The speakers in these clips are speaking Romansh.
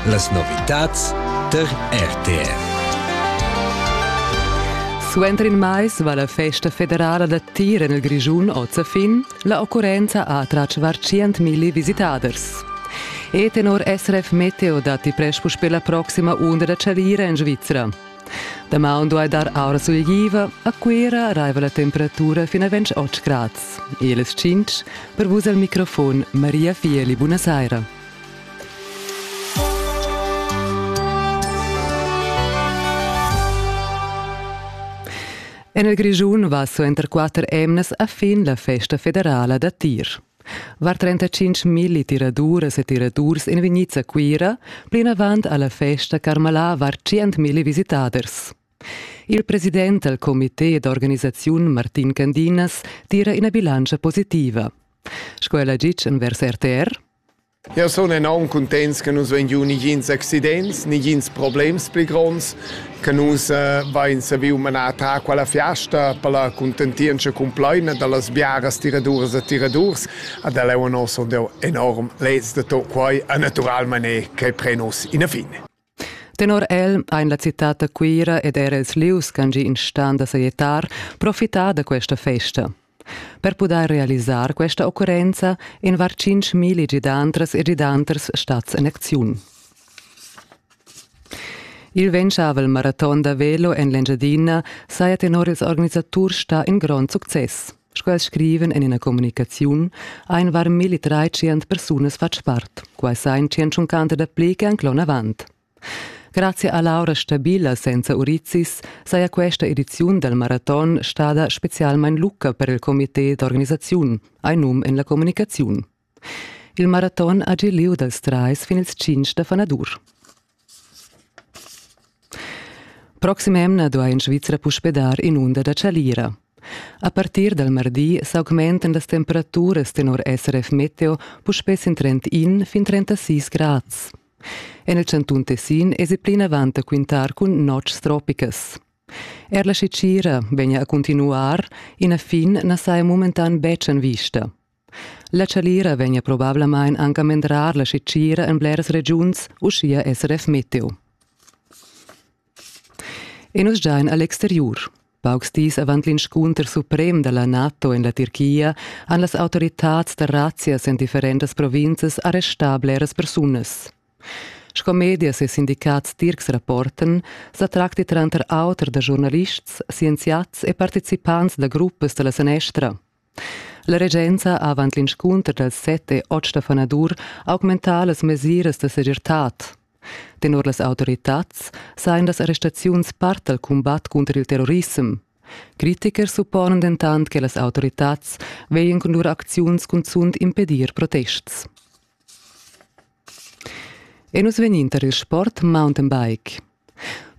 Las novitads tar RTR. Suenter in mais va la festa federala da tir en il Grischun oz a fin. La occurrenza ha attratg var 100.000 visitaders. E tenor SRF Meteo datti presch puspè la proxima unda da charira en Svizra. Damaun duai dar aura sulegliva, a Cuira raiva la temperatura fin a 28 grads. E les 5 per vus al microfon Maria Fieli, buonasera. En il Grischun va suenter quatter emnas a fin la festa federala da tir. Var 35 milli tiraduras e tiradurs ein vegnids a Cuira plinavant alla festa Carmalà var 100 milli visitaders. Il president dal comité d'organisaziun Martin Candinas tira ina bilantscha positiva. Sco el ha ditg envers RTR, Jau sun enorm cuntents che nus vein giu nigins accidents, nigins problems pli gronds, che nus eh, vein saviu manar a ta quella fiasta per la contentientscha cumplaina dallas biaras tiraduras e tiradurs. Ad el è nos enorm lez de tot quai a naturalmané che pre nus ina fine. Tenor el ein la citad da Cuira ed era ils lius ch'han gì in stan da sajettar profità da questa festa. Per pudair realisar questa occurrenza in var tschintg gidantras e gidanters stats en acziun. Il ventgavel maraton da velo en l'Engiadina saja tenor ils organisaturs stà in grond success. Sch'els scriven en ina communicaziun, ein varmilli treicient persunas fatg part. Quai sa in tschentschuncanta da pli che anc l'onavant. Grazie a Laura Stabila senza Urizis saja questa ediziun dal maraton stada spezialmain lucca per il comité d'organisaziun, ein num en la communicaziun. Il maraton ha giu liug dals trais fin ils tschintg da fanadur. Proxim'emna duai in Svizra puspè dar in'unda da chalira. A partir dal mardi s'augmentan las temperaturas tenor SRF Meteo puspè sin 31 fin 36 grads. En il chantun Tessin èsi plinavant da quintar cun notgs tropicas. Er la Cicira vegna a continuar, ina fin na saja momentan betg en vista. La chalira vegn probablamain anc a mendrar la scitgira en bleras regiuns, uschia SRF Meteo. E nus giain a l'exteriur. Paucs dis avant l'inscunter suprem da la NATO en la Tirchia han las autoritads da razzias en differentas provinzas arrestà bleras persunas. Sco medias e sindicats tircs rapportan, sa tracti tranter auter da giornalists, scienziats e participants da gruppas da la sanestra. La regenza ha avant l'inscunter dals set e otg da fanadur augmentà las mesiras da segirtad. Tenor las autoritads sajan las arrestaziuns part dal cumbat cunter il terrorissem. Critiker supponen dentant che las autoritads veien cun lur acziuns cunzunt impedir protests. E nus vegnin tar il sport mountain bike.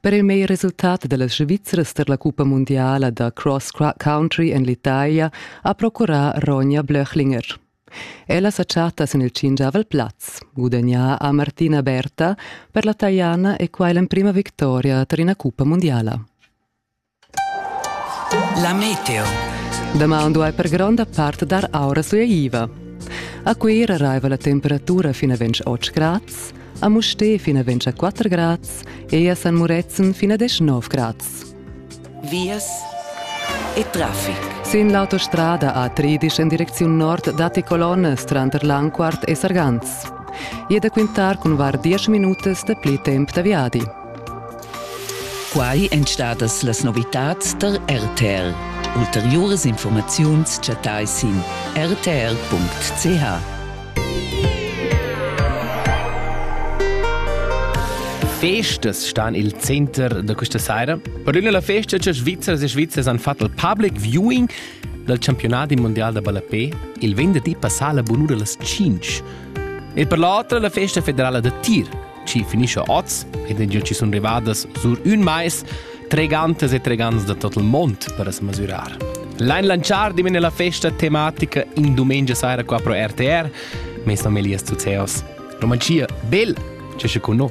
Per il meglier resultat da las Svizzras tar la cuppa mundiala da cross country en l'Italia ha procurà Ronja Blöchlinger. Ella sa chatta sin il cingiavel plaz, gudagnà a Martina Berta per la Tajana e quai l'emprima victoria tar ina cuppa mundiala. La meteo. Damaun duai per gronda part dar aura sueiva. A Cuira raiva la temperatura fina ventg 8 grads, a Mustè fina ventg 4 grads e a San Murezzan fina 19 grads. Vias e traffic. Sin l'autostrada A13 en direcziun nord datti colonnas tranter Lanquart e Sargans. E da quintar cun var 10 minutas da pli temp da viadi. Quai èn stadas las novitads tar RTR. Ulteriuras informaziuns chattai sin rtr.ch. Festas stan il center da questa saira. Per una la festa che Svizzers e Svizzers han fatto il public viewing dal campionat mondial da ballapé il venerdì passà la bunura las 5. E per l'altra la festa federala da tir chi finischa oz ed è già ci sun rivadas sur ün mais tregantas e tregants da tot il mond per as mesurar. L'Ain Lanchar dimena la festa tematica in dumengia saira qua pro RTR, mes familias zu Zeos. Romanzia, bel, c'è con noi.